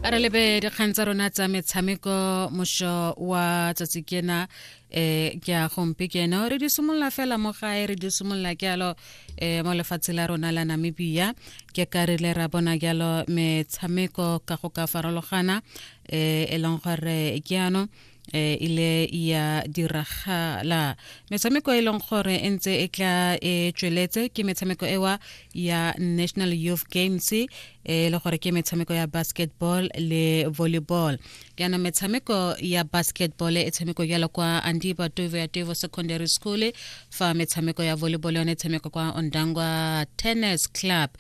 a re lebe dikgang tsa rona tsa metshameko mošo wa tsatsi kena um ke a gompe keno re di simolola fela mo gae re di simolola ke alo um mo lefatshe la rona la namibia ke ka re le ra bona jalo metshameko ka go ka farologana um e leng gore ke ano e ile ya diragala metshameko e leng gore e ntse e tla e tsweletse ke metshameko ewa ya national youth games e le gore ke metshameko ya basketball le volleyball yana metshameko ya basketball e tshameko jalo kwa andiba tovo ya tovo secondary school fa metshameko ya volleyball yone e tshameko kwa ondangwa tennis club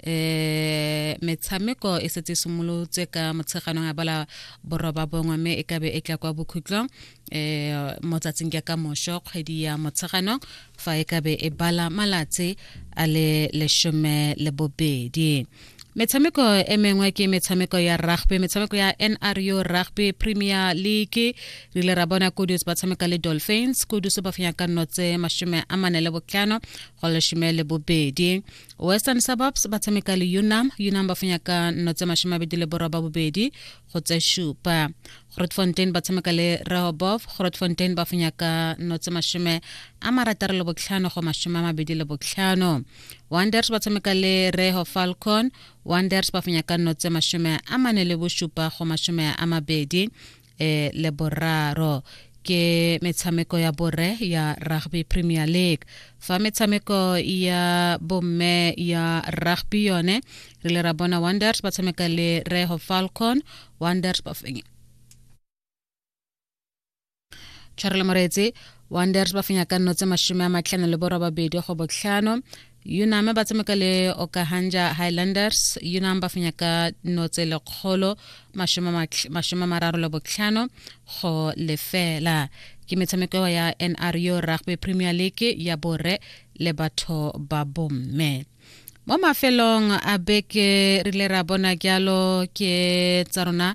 eh metshameko e setse e simolotse ka motsheganong a bala boroba bongwe mme e kabe e tla kwa bokhutlong eh mo tsatsing ke ka mosho kgwedi ya motsheganong fa e kabe e bala malatsi a le leshome le bobedi metshameko e mengwe ke metshameko ya rugby metshameko ya nru rugby premier league re ile ra bona kudus ba tshameka le dolphins kudus ba fenya ka nno tse mashome a mane le botlhano go leshome le bobedi western suburbs ba tshameka le unam unam ba fenya ka nno tse mashome abedi le borwa ba bobedi go tse shupa grotfontein ba tshameka le rehobov grotfontein ba fenya ka nno tse mashome a marataro le botlhano go mashome a mabedi le botlhano wonders ba tshameka le reho falcon wonders ba fenya ka nno tse mashome a mane le bosupa go mashome a mabedi e le boraro ke metshameko ya bore ya rugby premier league fa metshameko ya bomme ya rugby yone re le ra bona wonders ba tshameka le reho falcon wonders ba fenya tshwarele moreetse wonders ba fenya ka nno tse masome a matlhano le borobabedi go botlhano Yunam ba tshameka le Okahanja Highlanders. Yunam ba fenya ka notse lekgolo mashome mararo le botlhano go lefela. Ke metshameko ya NRU Rugby Premier League ya borre le batho ba bomme. Mo mafelong a beke re ile ra bona jalo ke tsa rona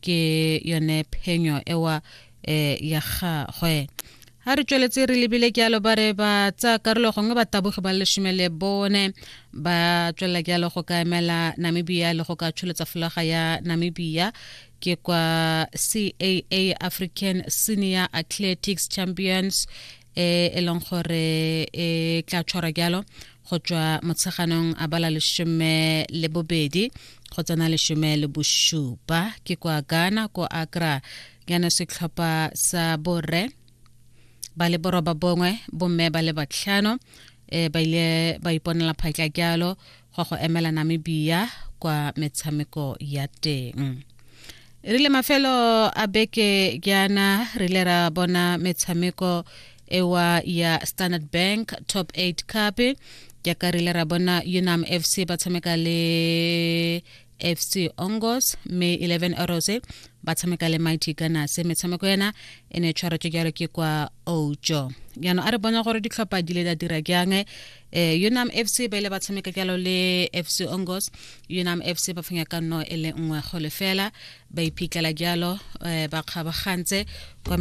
ke yone phenyo ewa eh, ya gagwe ga re tsweletse re lebile ke alo ba re ba tsa karolo gongwe ba taboge ba lesome le bone ba tswelela ke alo go ka emela namibia le go ka tsholetsa folaga ya namibia ke kwa caa african senior athletics champions e e leng gore e tla tshwara jalo go tswa motsheganong a bala lesome le bobedi go tsena lesome le bosupa ke kwa ghana ko akra yana setlhopha sa borre ba le boroba bongwe bomme ba le batlhano um ba ile ba iponela phatla jalo go go emela namibia kwa metshameko ya teng e rile mafelo a beke jaana re ile ra bona metshameko ewa ya standard bank top 8 cup jaaka re ile ra bona unam fc ba tshameka le fc ongos may 11 arose ba tshameka le mighty gunners metshameko yana e ne tshwara tse jalo ke kwa ojo jaanong a re bona gore ditlhopha di le da dira jang um eh, unam fc ba ile ba tshameka jalo le fc ongos unam fc ba fenya ka nno e le nngwe go lefela ba iphitlhela jalo um ba kgabagantse kwa